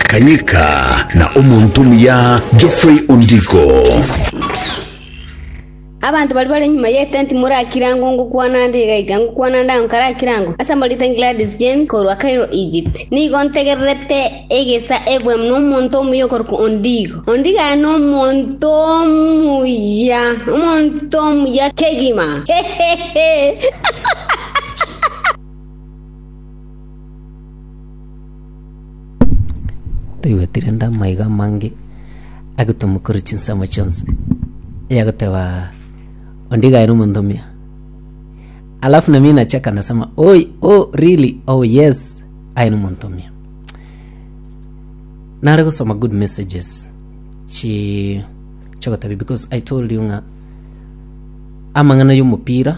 Kanyika na omonto omuya Geoffrey Ondiko. Abanto baria bare nyuma y'etenti morakire ango ngokwana ande iga iga ngokwana ande ango karakire ango, ase amoriten Gladys James korwa Cairo Egypt. Nigo ntegererete egesa ebwemu na omonto omuya okorokwa Ondiko. Ondiko aye nomonto omuya, omonto omuya kegima. Hehehe. Toigwetire rende amaiga amange agotomokora chinsemo chionsi, onye agoteba onde iga aye nomonto omuya. Alafu nami nachaka nasema oi oh really oh yes aye nomonto omuya. Nare gosoma good messages chi chigotabia because I told you ng'a amang'ana yomopira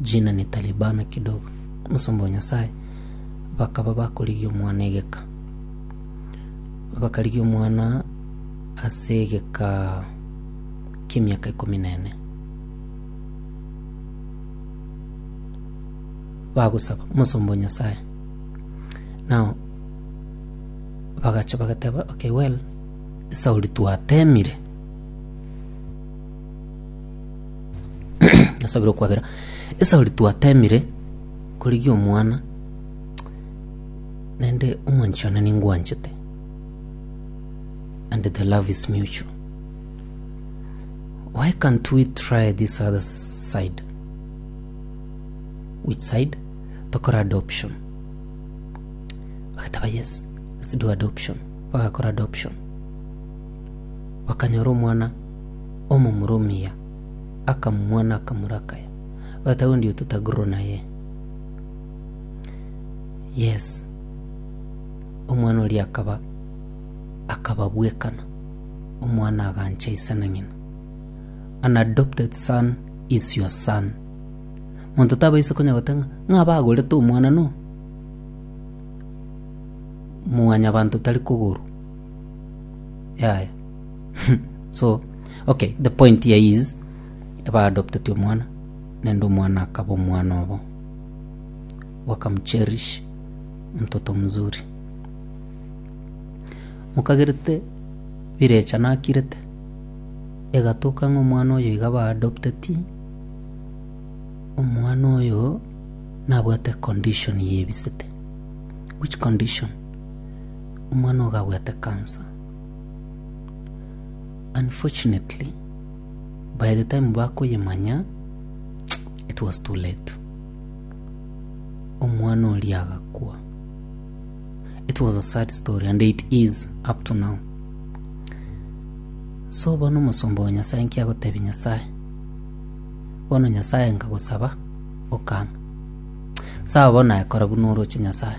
Jina ne Talibana kidogo, omosomba o Nyasae, bakaba bakorigia omwana egeka. Bakarigia omwana ase egeka ki'emiaka ikomi na ene. Bagosaba omosomba o Nyasae, nao bagacha bagateba, Okay well, Sauli twatemire. Nasabire okwabera. Esauri twatemire korigia omwana naende omonche one ningwanchete and the love is mutual. Why can't we try this other side? Which side? Tokore adoption. Bagateba yes, let's do adoption. Bagakora adoption. Bakanyora omwana Omomurumia akamumua na akamura akaya, Bata onde ototagururwa naye? Yes. Omwana oria akaba akaba bwekana, omwana agancha ise na ng'ina. An adopted son is your son. Monto tabaisa konya goteba ng'a ng'a bagorete omwana no mwanyabanto tari kogorwa, yaya. so okay the point here is eba adopted omwana nende omwana akaba omwana obo wakamcherish mtoto mzuri mokagerete birecha nakirete egatoka ng'a omwana oyo iga ba adopteti omwana oyo nabwate econdition ya ebisete which condition? omwana oyo gabwate cancer. Unfortunately, by the time bakoyemanya, it was too late. Omwana oria agakwa. It was a sad story and it is up to now. So bono omosomba wa Nyasaye nki agotebi Nyasaye? Bono Nyasaye nkagosaba okanga. Saba bono naye kora buna oroche Nyasaye.